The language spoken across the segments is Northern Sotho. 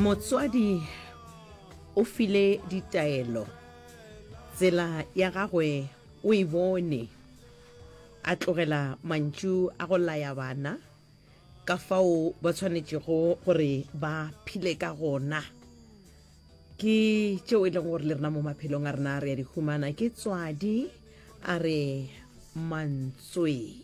motswadi o file ditaelo tsela ya gagwe o e bone a tlogela mantšu a go laya bana ka fao ba tshwanetšego gore ba phile ka gona ke tšeo e leng gore le rena mo maphelong a rena re ya di humana ke tswadi a re mantsweng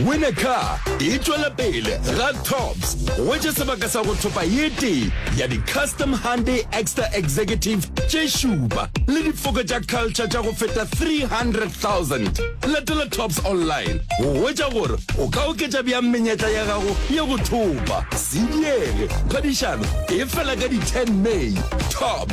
Winner Car e tšwela pele ga Tops go tše sebaka sa go thopa ye tee ya di-custom Hyundai Extra Executive tše šupa le difoko tša culture tša go feta 300,000. Latela Tops online go hwetša gore o ka oketša bjang menyetla ya gago ya go thopa. Se diege, phadišano e fela ka di-10 May. Tops.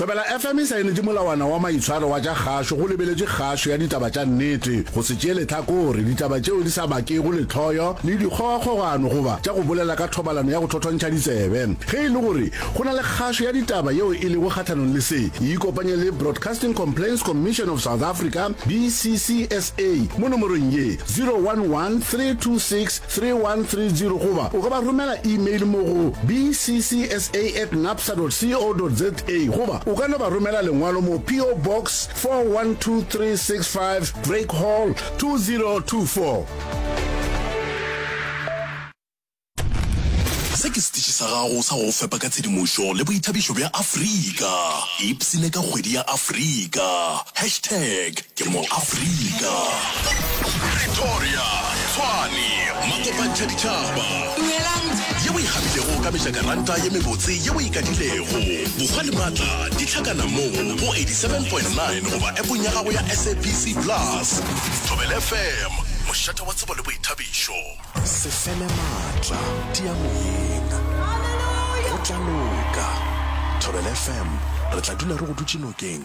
Thobela FM e saenetše molawana wa maitshwaro wa tša kgašo go lebeletše kgašo ya ditaba tša nnete, go se tšee lehlakore, ditaba tšeo di sa bakego lehloyo le dikgogakgogano goba tša go bolela ka thobalano ya go thothontšha ditsebe. Ge e le gore go na le kgašo ya ditaba yeo e lego kgahlanong le se, e ikopanye le Broadcasting Complaints Commission of South Africa, BCCSA, mo nomorong ye, 011 326 3130 goba o ka ba romela email mo go bcsa at napsa dot co dot za goba o ka no ba romela lengwalo mo PO Box 412365 Drake Hall 2024. Se ke setiši sa gago sa go go fepa ka tshedimošo le boithabišo bja Afrika. Ipsine ka kgwedi ya Afrika. Hashtag. Ke mo Afrika. Pretoria, Tshwane, Makopantšhaditšhaba. Dumelang. Ye o e kgabilego ka mejakaranta ye mebotse ye o e kadilego. Bokgwa le matla di hlakana mo go 87.9 goba appong ya gago ya SABC Plus. Thobela FM, mošate wa tsebo le boithabišo. Se fele matla, tia moyeng. Go tla loka. Thobela FM, re tla dula re go dutše nokeng.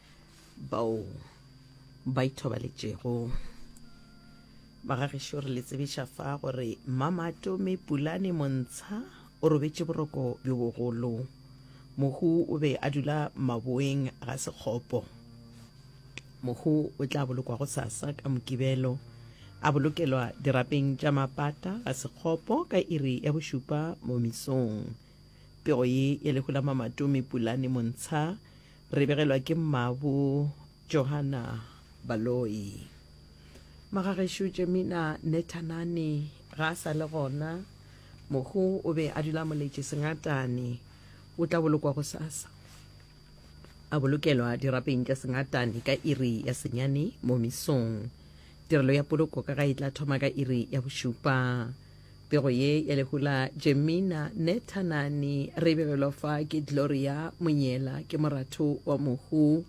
bao ba ithobaletšego ba ga gešo re le tsebiša fa gore mamatome pulane montsha o robetše boroko bjo bogolo mohu o be a dula maboeng ga sekgopo mohu o tla bolokwa go sasa ka mokibelo a bolokelwa dirapeng tša mapata ga sekgopo ka iri ya bošupa mo misong pego ye ya lehu la mamatome pulane montsha Re begelwa ke mmabo Johanna Baloyi. Magagešo Jemina Nethanane ga a sa le gona. Mohu o be a dula moletše Sengatane. O tla bolokwa gosasa. A bolokelwa dirapeng tša Sengatane ka iri ya senyane mo misong. Tirelo ya poloko ka ga e tla thoma ka iri ya bošupa. Pego ye ya lehu la Jemina ne Thanani re begelwa fa ke Gloria Monyela ke moratho wa mohu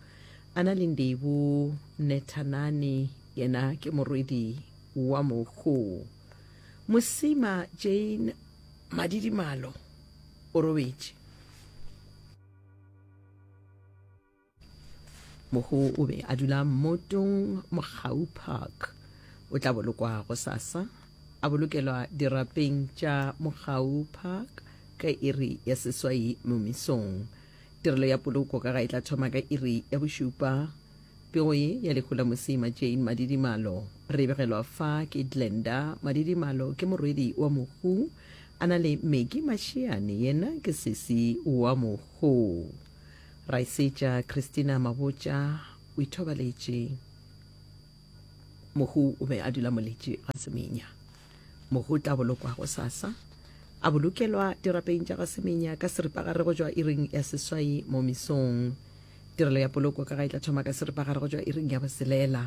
a na le Ndebu ne Thanani yena ke morwedi wa mohu. Mosima Jane Madidimalo o robetše. mohu o be a dula mmotong mogau park o tla bolokwa go sasa a bolokelwa dirapeng tša mogau park ka iri ya seswai momisong tirelo ya poloko ka ga e tla thoma ka iri ya bošupa pego ye ya lehu la mosima jane madidimalo re begelwa fa ke glenda madidimalo ke morwedi wa mohu a na le meki mašiane yena ke sesi wa mohu Raesitša Christina Mabotja o ithobaletše. Mohu o be a dula moletši ga Semenya. Mohu o tla bolokwa go sasa. A bolokelwa dirapeng tša ga Semenya ka seripagare go tšwa iring ya seswai mo misong. Tirelo ya poloko ka ga e tla thoma ka seripagare go tšwa iring ya boselela.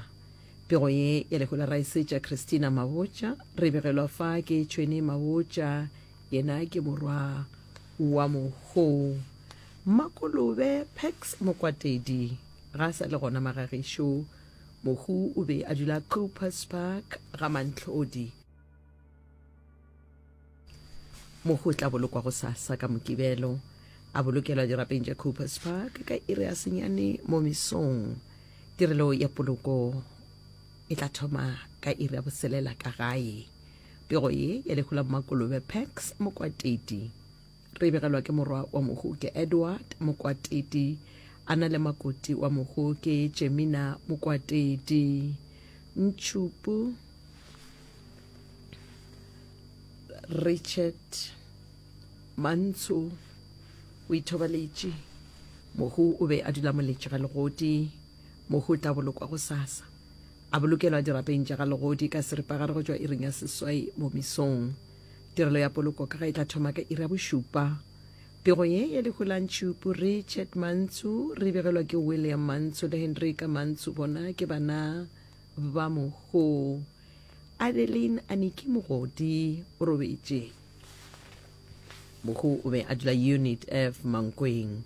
Pego ye ya lehu la Raesitša Christina Mabotja re begelwa fa ke Tšhweni Mabotja, yena ke morwa Wa mohoo. Mmakolobe Pax Mokwatedi ga a sa le gona Magagesho. Mohu o be a dula Coupers Park ga Mantlhodi. Mohu o tla bolokwa gosasa ka Mokibelo, a bolokelwa dirapeng tša Coupers Park ka iri ya senyane mo mesong. Tirelo ya poloko e tla thoma ka iri ya boselela ka gae. Pego ye ya lehu la bomakolobe Pax Mokwatedi re e begelwa ke morwa wa mohu ke Edward Mokwatedi a na le makoti wa mohu ke Jemina Mokwatedi Ntšhupu Richard Mantsho o ithobaletše mohu o be a dula moletše ga legodi mohu o tla bolokwa go sasa A bolokelwa dirapeng tša ga legodi ka seripagare go tšwa iring ya seswai mo mesong. Tirelo ya poloko ka ga e tla thoma ka iri ya bošupa. Pego ye ya lehu la ntšhupu, Richard Mantsu, re e begelwa ke William Mantsu le Hendrika Mantsu, bona ke bana ba mohu. Adeline Aniki Mogodi o robetše. Mohu o be a dula Unit F, Mankweng.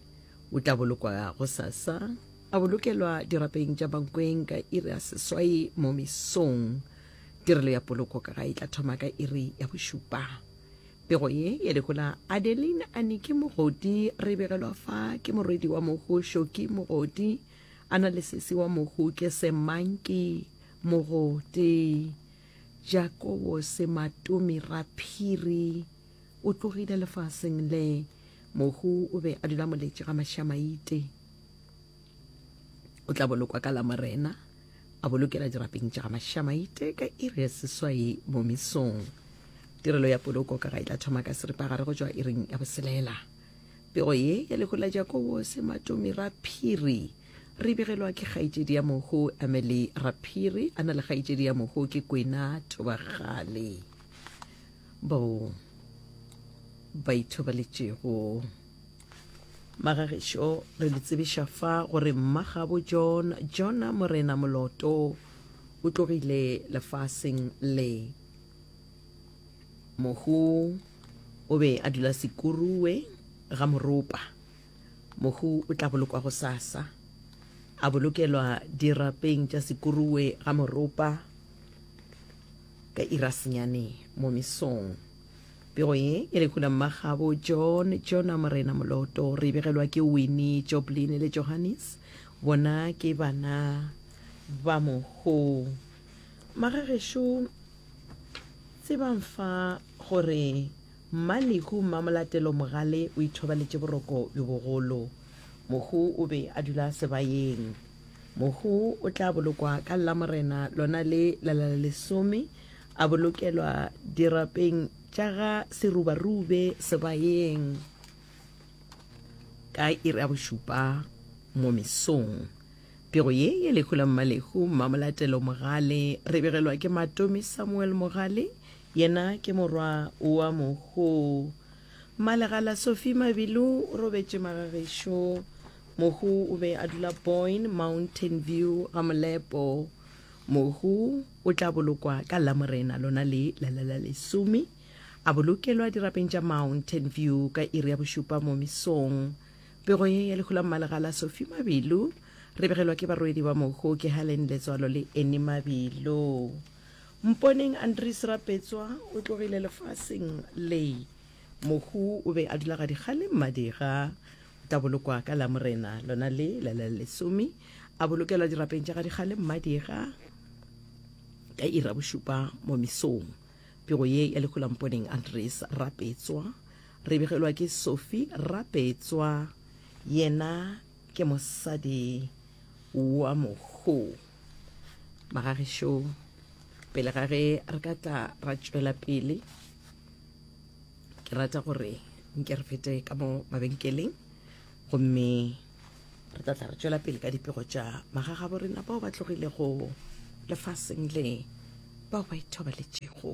O tla bolokwa gosasa, a bolokelwa dirapeng tša bankweng ka iri ya seswai mo mesong. Tirelo ya poloko ka gae e tla thoma ka iri ya bošupa. Pego ye ya lehola Adeline Anike Mogodi re begelwa fa ke morwedi wa mohu Shoki Mogodi, a na le sesi wa mohu ke Semanki Mogodi, Jakobo Sematomi Raphiri, o tlogile lefaseng le. Mohu o be a dula moletše ga mašamaite. O tla bolokwa ka Lamorena, a bolokela dirapeng tša ga mašamaite ka iri ya seswai mo mesong. Tirelo ya poloko ka ga e tla thoma ka seripagare go tšwa iring ya boselela. Pego ye ya lehu la Jakobo Sematomi Raphiri re begelwa ke kgaetšedi ya mohu Emily Raphiri a na le kgaetšedi ya mohu ke Kwena Thobagale. bao ba ithobaletšego. Magageso re le tsebiša fa gore mmagabo John Jona Morena Moloto o tlogile lefaseng le. Mohu o be a dula Sekurue ga Moropa. Mohu o tla bolokwa go sasa a bolokelwa dirapeng tša Sekurue ga Moropa. Ka ira senyane mo mesong. Pego ye e re hula mmagabo John Jona Morena Moloto re e begelwa ke Winnie Joblin le Johannes bona ke bana ba moho magagešu tsebang fa gore mmalehu mmamolatelo mogale o ithobaletše boroko bjo bogolo mohu o be a dula sebayeng Mohu o tla bolokwa ka Llamorena lona le lalalesome, a bolokelwa dirapeng tša ga Serubarube sebayeng ka iri ya bošupa mo mesong. Pego ye ye lehu la Mmalehu Mmamolatelo Mogale re begelwa ke Matomi Samuel Mogale, yena ke morwa wa Mohu. Mmalegala Sophie Mabilu o robetše magagešo. Mohu o be a dula Boyne, Mountain View, Gamolepo. Mohu o tla bolokwa ka Lamorena lona le la la la lesome. A bolokelwa dirapeng tša Mountain View ka iri ya bošupa mo mesong. Pego ye ya lehu la Mmalegala Sophie Mabilu re begelwa ke barwedi ba mohu ke Helen Letswalo le Annie Mabilu. Mponeng Andries Rapetswa o tlogile lefaseng le. Mohu o be a dula gadikgale Mmadira. O tla bolokwa ka Lamorena lona le la la lesome. A bolokelwa dirapeng tša gadikgale Mmadira ka iri ya bošupa mo mesong. Pego ye ya lehu la Mponeng Andries Rapetswa re begelwa ke Sophie Rapetswa yena. Ke mosadi wa mohu. Magagesho, pele ga ge re ka tla ra tšwela pele, ke rata gore nke re fete ka mo mabenkeleng gomme re tla tla re tšwela pele ka dipego tša magagabo rena bao ba tlogilego lefaseng le, bao ba ithobaletšego.